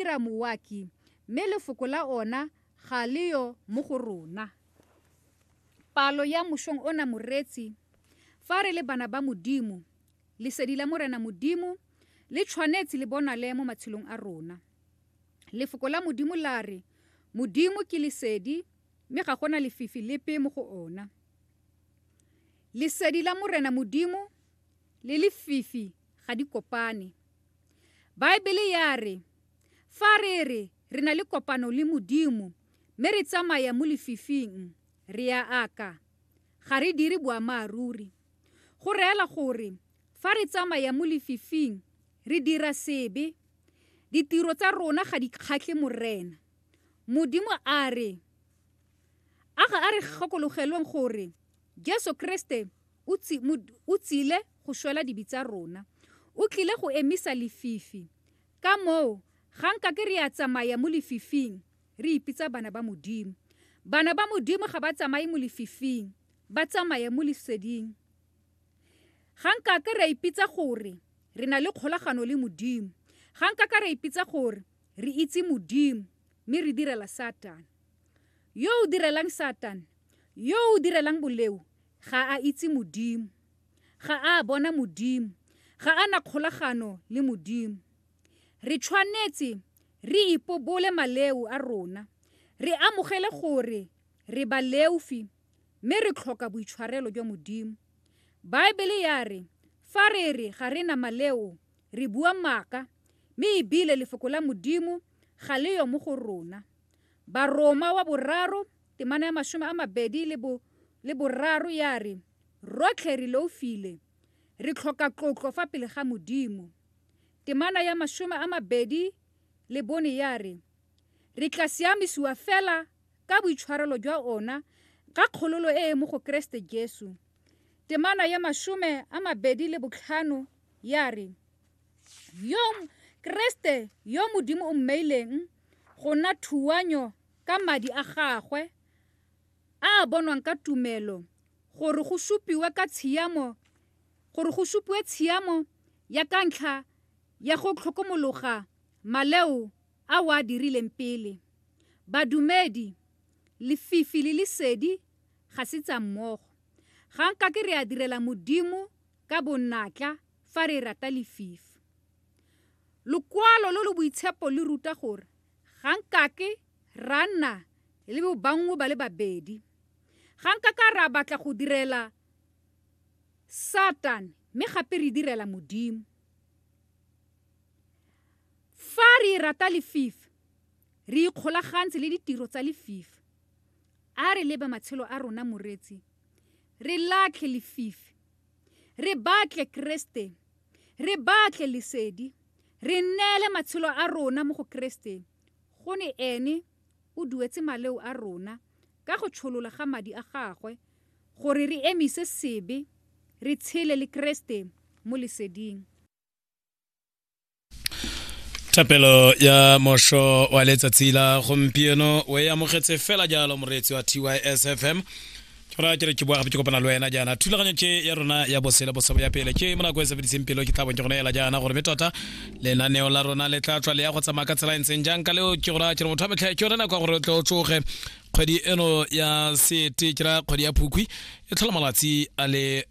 dira mouaki, mme lefoko la ona ga le yo mo go rona. Palo ya mošong ona moreetsi, fa re le bana ba Modimo, Lesedi la Morena Modimo le tshwanetse le bonale mo matshelong a rona. Lefoko la Modimo la re, Modimo ke Lesedi, mme ga gona lefifi lepe mo go ona. Lesedi la Morena Modimo le lefifi ga di kopane. Baebele ya re, Fa re re re na le kopano le Modimo mme re tsamaya mo lefifing, re a aka. Ga re dire boammaaruri. Go reela gore fa re tsamaya mo lefifing, re dira sebe. Ditiro tsa rona ga di kgatlhe Morena. Modimo a re, A ga a re gakologelweng gore Jesu Kreste o tsile go shwela dibi tsa rona. O tlile go emisa lefifi. Ka moo, ga nka ke re a tsamaya mo lefifing, re ipitsa bana ba Modimo. Bana ba Modimo ga ba tsamaye mo lefifing, ba tsamaya mo Leseding. Ga nka ke ra ipitsa gore re na le kgolagano le Modimo. Ga nka ka ra ipitsa gore re itse Modimo mme re direla Satane. Yo o direlang Satane, yo o direlang boleo, ga a itse Modimo. Ga a bona Modimo. Ga a na kgolagano le Modimo. Re tshwanetse re ipobole maleu a rona, re amogele gore re baleufi mme re tlhoka boitshwarelo jwa Modimo. Baebele ya re fa re re ga re na maleo re bua maaka mme ebile Lefoko la Modimo ga le yo mo go rona. Baroma wa boraro, temana ya masome a mabedi le bo le boraro ya re, Rotlhe re loufile, re tlhoka tlotlo fa pele ga Modimo. Temana ya masome a mabedi le bone ya re, Re tla siamisiwa fela ka boitshwarelo jwa ona ka kgololo e e mo go Keresete Jesu. Temana ya masome a mabedi le botlhano ya re, Yo Keresete yo Modimo o mmeileng go nna thuanyo ka madi a gagwe a a bonwang ka tumelo gore go supiwe ka tshiamo gore go supiwe tshiamo ya ka ntlha ya go tlhokomologa maleo a wa dirileng pele badumedi lefifi le lesedi ga se tsa mmogo ga nka ke re a direla modimo ka bonnatla fa re rata lefifi Lokwalo lo lo boitshepo le ruta gore ga nkake ra nna le bobanngwe ba le babedi. Ga nkaka ra batla go direla Satane mme gape re direla Modimo. Fa re rata lefifi, re ikgolagantse le ditiro tsa lefifi. A re leba matshelo a rona, moreetsi, re latlhe lefifi Re batle Keresete. Re batle lesedi. Re nneele matshelo a rona mo go Keresete, go ne Ene o duetse maleo a rona ka go tsholola ga Madi a Gagwe, gore re emise sebe, re tshele le Keresete mo leseding. thapelo ya mosho wa letsatsi la gompieno o e amogetse fela jalo moreetsi wa tysfm ke ra ke re ke boa gape ke kopana le wena jaana thulaganyo tše ya rona ya bosele bosabo ya pele ke mo nako e sebediseng pelo ke tlhabong ke gone ela jaana gore me tota lenaneo la rona le tla tswa le ya go tsamaya ka tsela e ntseng jang ka leo ke gora ke re motho a metlha ke yone nako ya gore o tle o tsoge kgwedi eno ya sete ke ra kgwedi ya phukwi e tlhola malatsi a le